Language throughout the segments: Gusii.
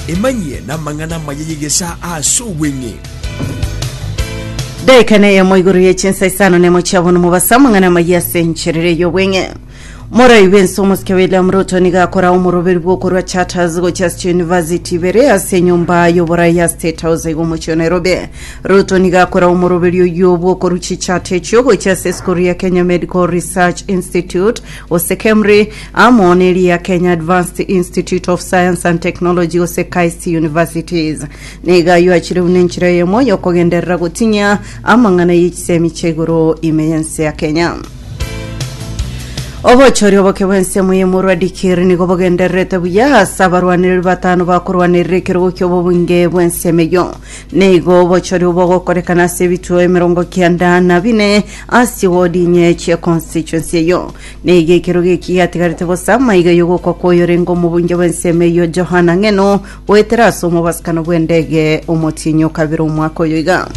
Emanyie namang'ana amaya y'egesaa ase obweng'e. Daika na eyemo igoro ye chinsa isano nemo chiabo nomobasa amang'ana amaya ase encherere y'obweng'e morai bwense omosike william ruto niga akora omoroberi bw'okorwa charters gochia ase chiuniversity ibere ase enyomba y'oborai ya state house iga omochie o nairobi ruto niga akora omoroberi oyio bw'okorwa chichati echio gochia ase esukuru ya kenya medical research institute gose kemri amo neria Kenya Advanced Institute of Science and Technology gose KIST Universities. Nigo ayio achireu nenchera eyemo yokogenderera gotinyia amang'ana y'echisemi chia igoro ime y'ense ya Kenya. Obochori oboke bw'ense y'omorwa Dikir nigo bogendererete buya ase abarwanereri batano bakorwanerera ekerogo ki'obobunge bw'ense emeyo. Nigo obochori obo ogokorekana ase ebituo emerongo kianda na bine ase wodi inye chie constituency eyo. Neiga ekerogo eki gatigarete bosa maiga y'ogokwa kw'oyorenge omobunge bw'ensemo eyio Johana ng'eno, goetera ase omobasukano bw'endege omotienyi o kabere omwaka oyo iga.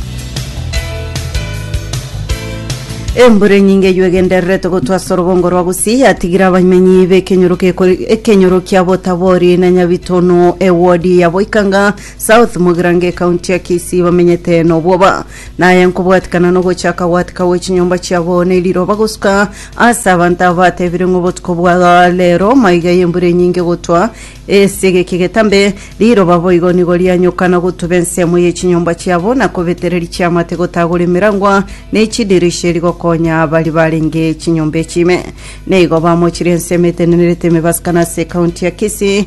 Embura enyinge eyio egendererete gotwa ase orogongo rwa Gusii yatigire abamenyi b'ekenyoro gekori- ekenyoro kia Botabori na Nyabitono ewodi ya Boikanga South Mogirango ekaunti ya Kisii bamenyete nobwoba. Naye nkobwatikana nogochaka gwatika gwe chinyomba chiabo ne riroba gosuka Ase abanto aba batebire ng'a obotuko bwa reero maiga y'embura enyinge gotwa ase egeki getambe, riroba boigo nigo rianyoka na gotuba ensemo ye chinyomba chiabo, na kobetereria chiamate gotagora emerangwa ne chidirisha erio gokonya baria barenge chinyomba echi ime. Nigo bamochirie ensemo etenenerete emebasika na ase ekaunti ya Kisii,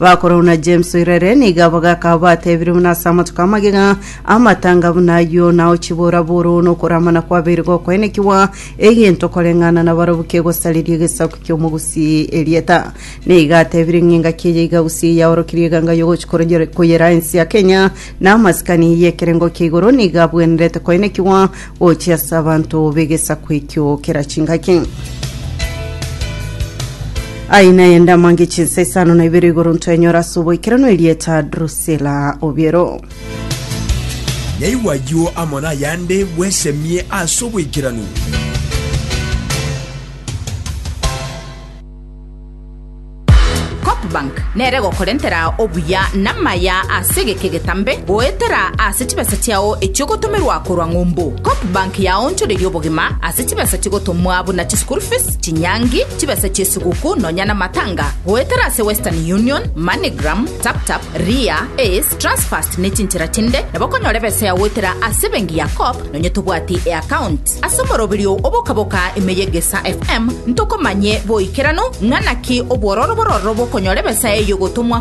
Bakuru na James oirere nigo abo gakao batebirie buna ase amatuko amagega amatanga buna ayio nao chiboraboru na okoramana kwabeire gokoenekigwa egento koreng'ana na barobu kegosariria egesaku ki'omogusi erieta nigo atebirie ng'a engaki eye igagusi yaorokirie eganga yogochi korogera- koyera ensi ya Kenya na amasikani y'ekerengo kia igoro nigo abwenerete koenekigwa Ochia ase abanto b'egesaku ekio kera chingaki. Aye naye ndamange chinsa isano na ibere igoro ntwenyora ase oboikeranu erieta Drusilla Obiero. Naigwa ayio amo nayande bwesemie ase oboikeranu. Copbank nere egokorentera obuya namaya ase egeka egetambe goetera ase chibesa chiao echiogotomerwa korwa ng'umbu. Copbank yaonchoreria obogima ase chibesa chigotomwa buna chischool fees, chinyangi, chibesa chiesiguku nonya namatanga goetera ase Western Union, Moneygram, Taptap, Ria, Ace, Transfast nechinchera chinde nabo okonyora ebesa yao goetera ase ebengi ya Cop nonya tobwati eaccount. Ase omoroberio oboka-boka ime y'Egesaa FM ntokomanye boikeranu ng'a naki obwororo bororo bokonyora ebesa eye y'ogotomwa